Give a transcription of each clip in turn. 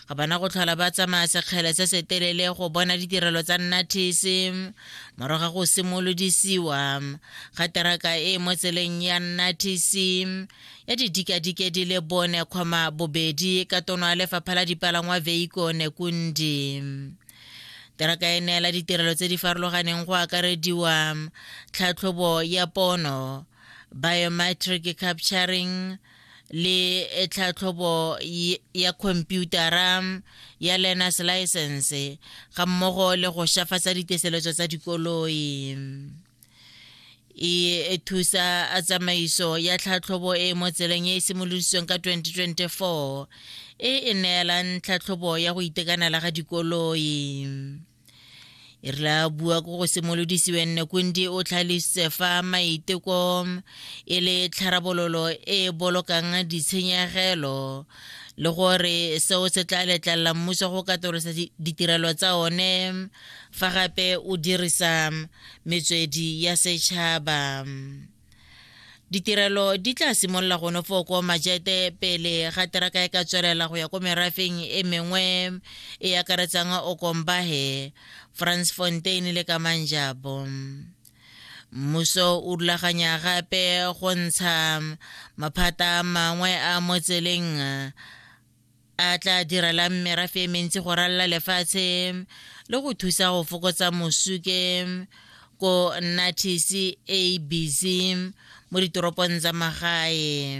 ga bana go tlhola ba tsamaya sekgele se se telele go bona ditirelo tsa nnathese morago ga go simolodisiwa ga teraka e e mo tseleng ya nnathese ya didikadike di le bone kgoma bobedi ka tono ya lefapha la dipalangwa veiko nekundi teraka e neela ditirelo tse di farologaneng go akarediwa tlhatlhobo ya pono biometric capturing le eh, tlhatlhobo ya khomputara ya learners license ga mmogo le go shafatsa diteseletso tsa dikoloi e thusa a tsamaiso ya tlhatlhobo e mo tseleng e e simolodisweng ka 2024 e e neelang tlhatlhobo ya go itekanela ga dikoloi e re la bua ko go simolodisiwe nne kundi o tlhalositse fa maiteko e le tlharabololo e e bolokang ditshenyegelo le gore seo se tla letlelela mmuso go katolosa ditirelo tsa one fa gape o dirisa metswedi ya setšhaba Ditirelo di tla simolola go nofo ko majete pele ga teraka e ka tswelela go ya ko merafeng e mengwe e akaretsang Okombahe, Fransfontein le Kamanjabo. Mmuso o rulaganya gape go ntsha maphata mangwe a mo tseleng a tla direlang merafe e mentsi go ralla lefatshe le go thusa go fokotsa mosuke ko nathisi abc mo ditoropong tsa magae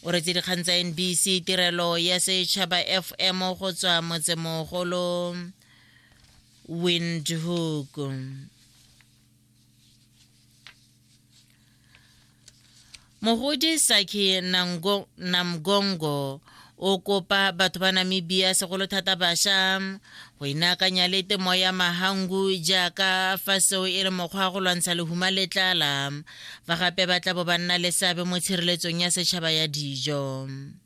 o retse dikgang tsa nbc tirelo ya setšhaba fm go tswa motsemogolo windhoek mogodi saki namgongo o kopa batho ba namibia segolo thata bašwa go inaakanya le temo ya mahangu jaaka fa seo e le mokgwa wa go lwantsha lehuma le tlala fa gape ba tla bo ba nna le seabe mo tshireletsong ya setšhaba ya dijo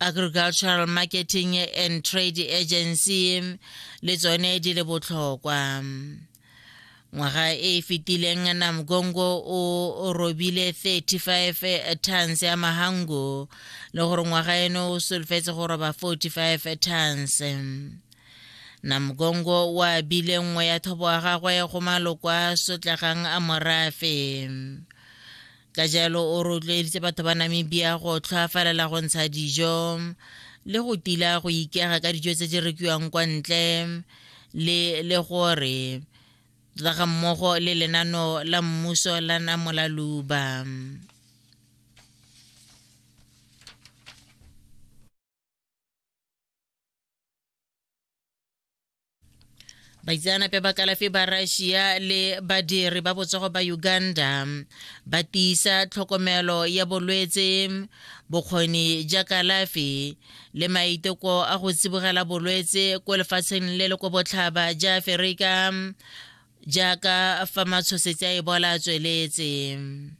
agricultural marketing and trade agency le tsone di le botlhokwa ngwaga e e fetileng namgongo o robile 35 tons ya mahango le gore ngwaga eno o solofetse go roba 45 tons namgongo o abile nngwe ya thobo ya gagwe go maloko a sotlegang a morafe ka jalo o rotloeditse batho ba namibia go tlhoafalela go ntsha dijo le go tila go ikega ka dijo tse di rekiwang kwa ntle le le gore tla ga mmogo le lenano la mmuso la namolaluba baitseanape ba kalafi ba russia le badiri ba botsogo ba uganda ba tiisa tlhokomelo ya bolwetse bokgoni ja kalafi le maiteko a go tsibogela bolwetse ko lefatsheng le le ko botlhaba ja aferika jaaka fa matshosetsi a ebola a tsweletse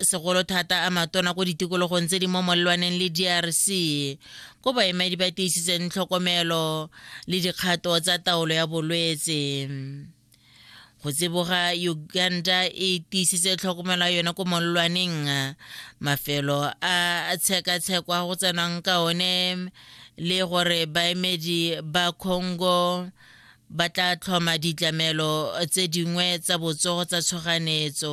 segolo thata a matona ko ditikologong tse di mo molelwaneng le drc ko baemedi ba tiisitseng tlhokomelo le dikgato tsa taolo ya bolwetse go tseboga uganda e tiisitse tlhokomelo ya yone ko molelwaneng mafelo a tshekatshekwa go tsenwang ka one le gore baemedi ba congo ba tla tlhoma ditlamelo tse dingwe tsa botsogo tsa tshoganetso.